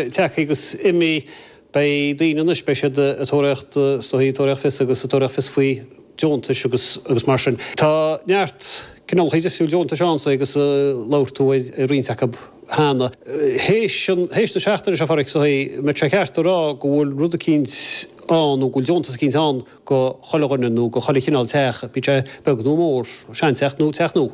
tagaigí agus imígí. Beidh daoine anois, beidh siad ag tóraíocht is dóichí ag tóraíocht fios agus ag tóraíocht fios faoi deontais agus agus mar sin. Tá neart cineálacha difriúla deontais ann sa agus labhair tú ar ar roinnt acu cheana. Théis an théis na seachtaine seo, a Phádraic, is dóichí an mbeadh sé ceart a rá go bhfuil rud eicínt ann nó go bhfuil deontas eicínt ann go chuile dhuine nó go chuile chineál teach, bíodh sé beag nó mór, sean-teach nó teach nua.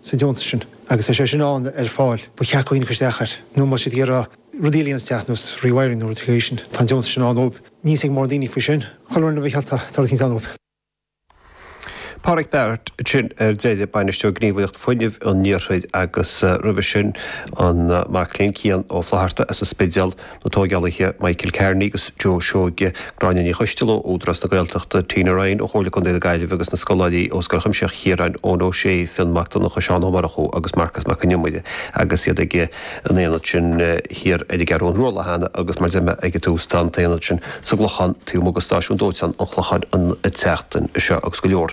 sa deontas sin. Agus tá sé sin ann ar fáil. Ba cheart go dhaoine ceist a chur nó má tá siad ag iarraidh rudaí eile a dhéanamh sa teach nós rewiring nó rudaí faoi sin, tá an deontas sin ann dóibh. Níl a fhios ag mórán daoine faoi sin. Chuile fhoireann a bheith geallta, tá rud éigin ann dóibh. Pádraic Barrett, sin ar deireadh bainisteoir Gníomhaireacht Fuinnimh an Iarthair agus roimhe sin an mac léinn Cian Ó Flaithearta as an Spidéal, Na tógálaithe Michael Kearney agus Joe Seoige, Gráinne Ní Choisteal ó Údarás na Gaeltachta, Tina Ryan ó Chomhairle Contae na Gaillimhe agus na scoláirí ó Scoil Chuimsitheach Chiaráin, Eoin Ó Sé, Fionn Mac Donnacha, Seán Ó Murchú agus Marcus Mac Con Iomaire agus iad ag an aonad sin thiar ar an gCeathrú Rua an lá cheana agus mar deirim ag an tús tá an t-aonad sin sa gClochán taobh amuigh de stáisiún dóiteáin an Chlocháin an tseachtain seo agus go leor.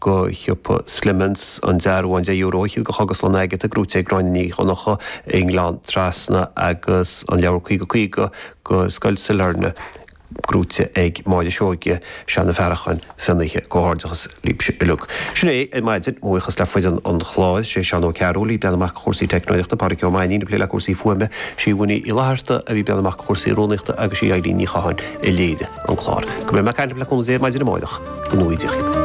go siopa Slemon's, an dearbhán €10 a shil go Cógaslann Agatha gnóite ag Gráinne Ní Dhonnacha i nGleann Trasna agus an leabhar Caoga Caoga go Scoil Sailearna gnóite ag Máire Seoige, Seanadh Farracháin, Fionnaithe, Comhghairdeachas libhse uilig. Sin é ar maidin, a bhuíochas le foireann an chláir, sé Seán Ó Cearúil ag breathnú amach chúrsaí teicneoireachta, Pádraig Ó Mainín ag plé le cúrsaí fuaime, Síomha Ní Fhlaithearta a bhí ag breathnú amach chúrsaí rúnaíochta agus sí Eilín Ní Chatháin a léirigh an clár. Go mbeidh mé ag caint libh le cúnamh Dé maidin amárach. Go nuige.